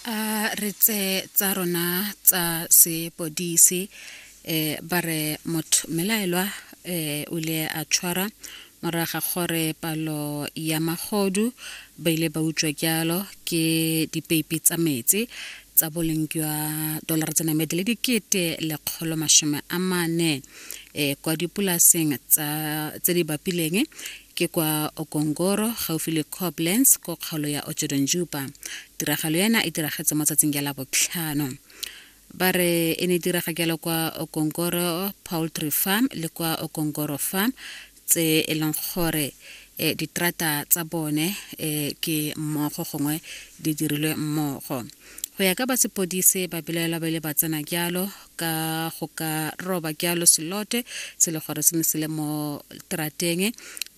a re tse tsa rona tsa sepodisi eh ba re motho melaelwa eh o ile a tshwara moraga gore palo ya magodu ba ile ba utswa jalo ke dipeipi tsa metsi tsa boleng jwa dolara tse namedi le dikete lekgolo masome a mane eh kwa dipolaseng tsa tse di bapileng Ke kwa Okongoro, gaufi le Koblenz, ko kgaolo ya Ochodonjupa. Tiragalo ena e diragetse mo tsatsing ya labotlhano. Ba re e ne diraga jalo kwa Okongoro Poultry Farm le kwa Okongoro Farm tse e leng gore eh, ditrata tsa bone eh, ke mmogo gongwe di dirilwe mmogo go ya ka ba sepodise ba belaelwa ba ile ba tsena jalo ka go ka roba ke alo selote se le gore se ne se le mo trateng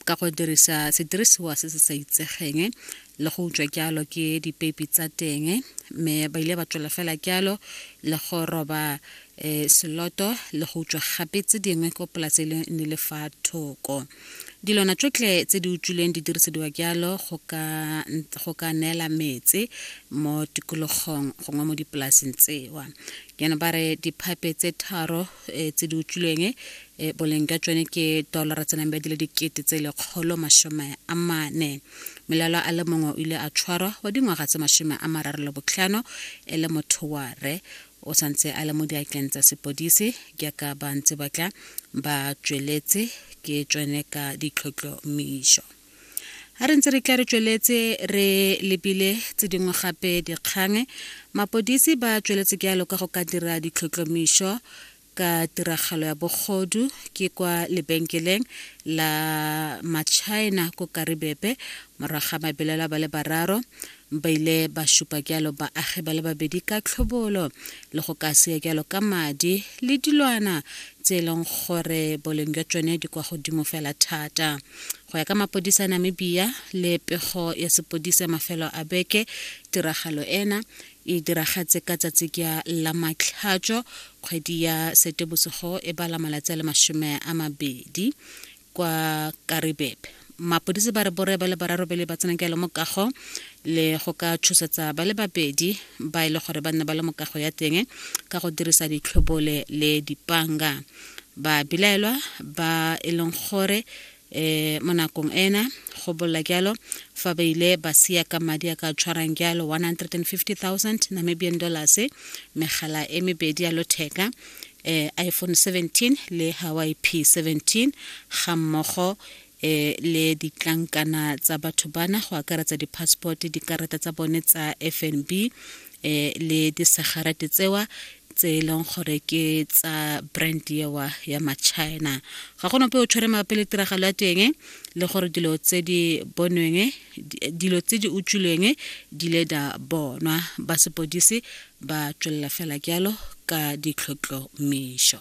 ka go dirisa sedirisiwa se se sa itsegeng le go utswa ke alo ke dipeipi tsa teng mme ba ile ba tswela fela ke alo le go roba um seloto le go utswa gape tse dingwe ko polase e ne le fa thoko dilwana tsotlhe tse di utswileng di dirisediwa jalo go ka, go ka neela metse mo tikologong gongwe mo dipolaseng tsewa jaanong ba re diphape tse tharo eh, tse di utswilweng eh, boleng jwa tsone ke dolara tse nang ba dile dikete tse lekgolo masome a mane melalo a le mongwe o ile a tshwarwa wa dingwaga tse masome a mararo le botlhano e le motho wa re o santse a le mo diatleng tsa sepodisi jaaka ba ntse ba tla ba tsweletse ke tsone ka ditlhotlhomišo a re ntse re tla re tsweletse re lebile tse dingwe gape dikgang mapodisi ba tsweletse jalo ka go ka dira ditlhotlhomišo ka tiragalo ya bogodu ke kwa lebenkeleng la machina ko karibebe morago ga mabelela ba le bararo ba ile ba šupa jalo baagi ba le babedi ka tlhobolo le go ka seya jalo ka madi le dilwana tse e leng gore boleng jwa tsone di kwa godimo fela thata go ya ka mapodisa namibia le pego ya sepodisa mafelo a beke tiragalo ena e diragatse ka tsatsi kya la matlhatšo kgwedi ya setebosego e bala malatsi a le masome a mabedi kwa karibebe mapodisi ba re bore ba le bararobele ba tsena kelo mokago le go ka tshosetsa ba le babedi ba e le gore ba nne ba le mokago ya teng ka go dirisa ditlhobole le dipanga ba bilaelwa ba e leng gore e mo nakong ena go bolla jalo fa ba ile ba sia ka madi a ka tshwarang jalo 150000 namibian dollars megala e mebedi ya lotheka e iphone 17 le hawaii p 17 ga mmogo e le ditlankana tsa batho bana go akaretsa di-passport dikarata tsa bone tsa fnb eh le disegarate tsewa tse e leng gore ke tsa brand ewa ya machina ga gona pe o tshwere mabapi le tiragalo ya teng le gore dilo tse di bonweng dilo tse di utswilweng di le da bonwa ba sepodisi ba tswelela fela jalo ka ditlhotlhomišo